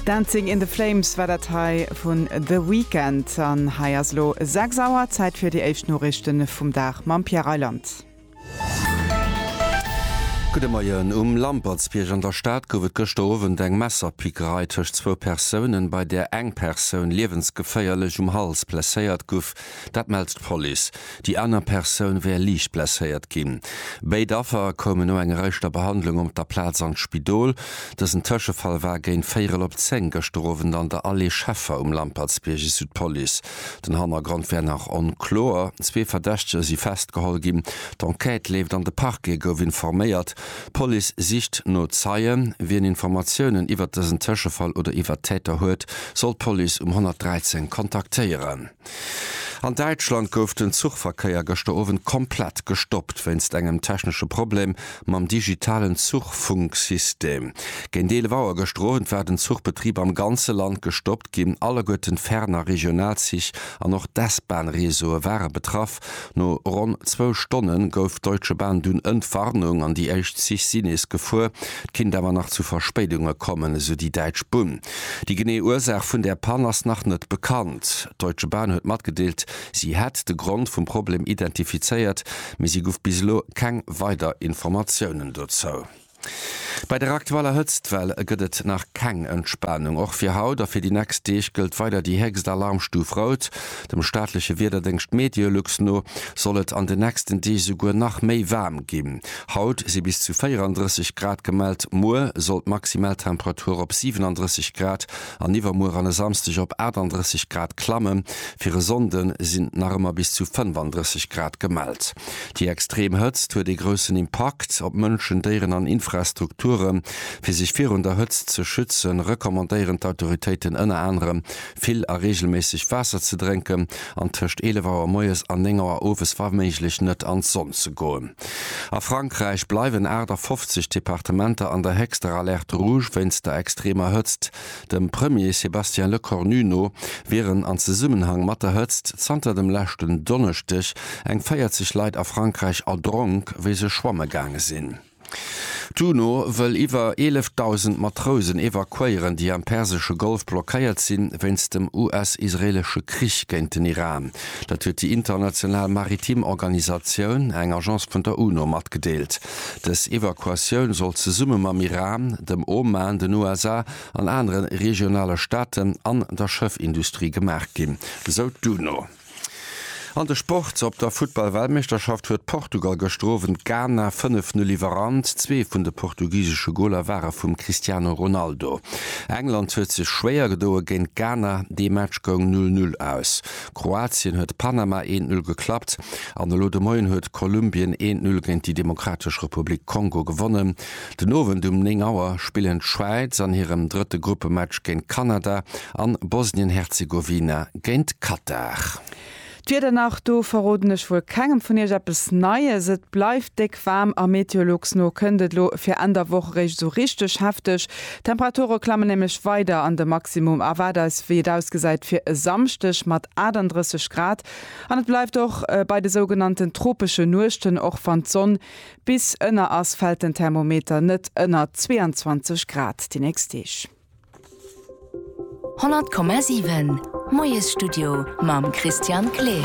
Dancing in the Flames war dat hei vun The Weeknd. An hei ass elo 6 Auer, Zäit fir déi éischt Noriichte vum Dag mam Pierre Reyland. Gudde Moien. Um Lampertsbierg an der Stad gouf et gëschter Owend eng Messerpickerei tëscht zwou Persounen, bei där eng Persoun liewensgeféierlech um Hals blesséiert guff. Dat mellt d'Police. Déi aner Persoun wär liicht blesséiert ginn. Béid Affer koumen no enger éischter Behandlung op der Plaz an d'Spidol. Dësen Tëschefall war géint véierel op zéng gëschter Owend an der Allée Scheffer um Lampertsbierg, esou d'Police. Den Hannergrond wär nach onkloer. Zwee Verdächtege si festgeholl ginn. D'Enquête leeft an de Parquet gouf informéiert. D'Police sicht no Zeien. Wien Informatiounen iwwert dësen Tëschefall oder iwwert d'Täter huet, soll d'Police um 113 kontaktéieren. An Däitschland gouf den Zuchverkéier gëschter Owend komplett gestoppt wéinst engem technesche Problem mam digitalen Zuchfunksystem. Géint 11 Auer gëschter Owend war den Zuchbetrib am ganze Land gestoppt ginn. Alleguerten d'Fern a Regionalzich an och d'S-Bahn-Reseaue ware betraff. Stop. No ronn zwou Stonne gouf d'Deutsche Bahn dunn Entwarnung an déi éischt Zich si nees gefuer. Et kinnt awer nach zu Verspéidunge kommen, esou déi däitsch Bunn. Déi genee Ursaach vun där Pann ass nach net bekannt. D'Deutsche Bahn huet matgedeelt, si hätt de Grond vum Problem identifizéiert, mee si guff bis elo keng weider Informatiounen dozou. Bei der aktueller Hëtztwell gëtt et nach keng Entspanung. Och fir haut a fir déi nächst Deeg gëllt weider déi héchst Alarmstuf Rout. Dem staatleche Wiederdéngscht Meteolux no soll et an den nächsten Deeg souguer nach méi waarm ginn. Haut si bis zu 34 Grad gemellt, muer soll d'maximal Temperatur op 37 Grad an iwwermuer an e Samsdeg op 38 Grad klamme. Fir e Sonnde sinn nach ëmmer bis zu 35 Grad gemellt. Déi extrem Hëtzt huet ee groussen Impakt op Mënschen, Déieren an Infrastrukture. Fir sech virun der Hëtzt ze schütze recommandéieren d'Autoritéiten ënner anerem, vill a reegelméisseg Waasser ze drénken an tëscht 11 Auer moies an 9 Auer owes wa méiglech net an d'Sonn ze goen. A Frankräich bleiwen 58 Departementer an der héchster Alerte rouge wéinst der extremer Hëtzt. Dem Premier Sébastien Lecornu no wieren an Zesummenhang mat der Hëtzt zanter dem leschten Donneschdeg eng 40 Leit a Frankräich erdronk, wéi se schwamme gaange sinn. D'UNO wëll iwwer 11.000 Matrousen evakuéieren, déi am persesche Golf blockéiert sinn, wéinst dem US-israeelesche Krich géint den Iran. Dat huet déi international maritim Organisatioun, eng Agence vun der UNO, matgedeelt. Dës Evakuatioun soll zesumme mam Iran, dem Oman, den USA an anere regionale Staaten an der Schëffindustrie gemaach ginn, esou d'UNO. An de Sport, Op der Futtball-Weltmeeschterschaft huet Portugal gëschter Owend Ghana 5, 0 iwwerrannt. Zwee vun de portugisesche Goler ware vum Cristiano Ronaldo. England huet sech schwéier gedoe géint Ghana, dee Match goung 0, 0 aus. Kroatien huet Panama eent Null geklappt an elo de Moien huet Kolumbien eent Null géint déi Demokratesch Republik Kongo gewonnen. Den Owend um 9 Auer spillen d'Schwäiz an hirem drëtte Gruppematch géint Kanada an Bosnien-Herzegowina géint Katar. D'Wieder nach, Do verroden ech wuel kengem vun iech eppes Neies. Et bleift déck waarm a meteologs no kënnt et elo fir Enn der Woch eréischt esou richteg hefteg. D'Temperature klammen nämlech weider an de Maximum erwaart eis, wéi et ausgesäit, fir e Samschdeg mat 38 Grad an et bleift och bei de sougenannten tropeschen Nuechten. Och wann d'Sonn bis ënner ass, fält den Thermometer net ënner 22 Grad déi nächst Deeg. 100,7 Moiesstudio mam Christian Kleer.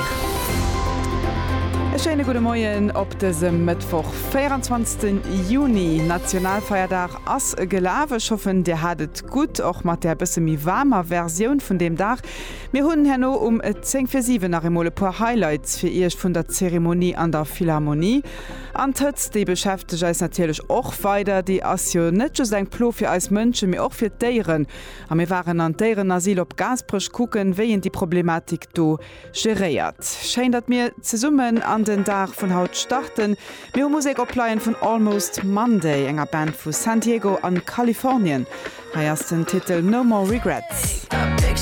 E schéine gudde Moien op dësem Mëttwoch, 24 Juni. Nationalfeierdag ass gelaf. Ech hoffen, Dir hat et gutt, och mat där bësse méi waarmer Versioun vun deem Dag. Mir hunn herno um 10 fir 7 nach eemol e puer Highlights fir Iech vun der Zeremonie an der Philharmonie. An d'Hëtzt, déi beschäftegt eis natierlech och weider. Déi ass jo net just eng Plo fir eis Mënschen, mee och fir d'Déieren. A mir waren an d'Déierenasyl op Gaasperech kucken, wéi een déi Problematik do geréiert. Schéin, datt mir zesummen an den Dag vun haut starten. Mir hu Musek opleien vun Almost Monday, enger Band vu San Diego an Kalifornien. Hei ass den Titel No More Regrets.